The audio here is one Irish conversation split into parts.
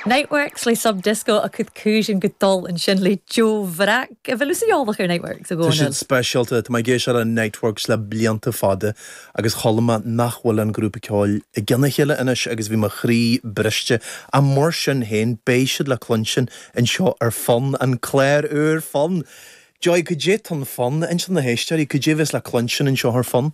Niteworks le Sub Disco a' cur cùisean gu dol an sin le deagh bhrag a bheil sibh eòlach air Niteworks i gcónaí. Tá siad speisialta. Tá mé ag éisteacht le Niteworks le blianta fada agus chuala mé nach bhfuil an grúpa ceoil i gcionn a chéile anois agus bhí mo chroí briste. Ach mar sin féin, beidh siad le cluinstin anseo ar Fonn, an clár úr Fonn! Joy, cad é atá in Fonn? Inis do na héisteoirí. Cad é a bheas le cluinstin anseo ar Fonn?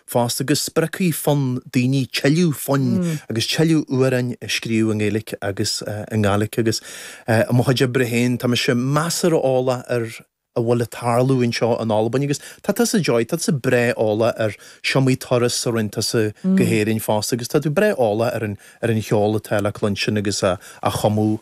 fosta go spreagfaidh Fonn daoine tuilleadh foinn agus tuilleadh amhráin a scríobh i nGaeilge agus i nGàidhlig agus i mo chuid oibre féin tá mise measartha eolach ar a bhfuil ag tarlú anseo in Albain agus tá tusa Joy, tá tusa breá eolach ar is iomaí turas a rinne tusa go hÉirinn fosta agus tá tú breá eolach ar an cheol atá le cluinstin agus á chumadh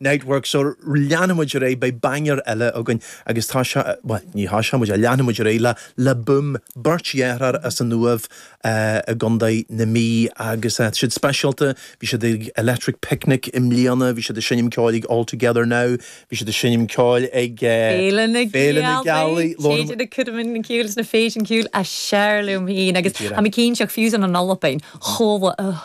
Niteworks so leanfaidh muid ar aghaidh beidh banger eile againn agus tá sé bhuel ní tá sé muid a leanfaidh muid ar aghaidh le Le Boom beirt dheartháir as an Uaimh i gContae na Mí agus siad speisialta bhí siad ag Electric Picnic i mbliana bhí siad ag seinm ceoil ag All Together Now bhí siad ag seinm ceoil ag Féile na Féile na Gealaí Lorna Téidir na Cúdamann na Cúil sna fèisean ciùil as fheàrr leam fhìn agus am a cinn seach fiù 's ann an Albain chomh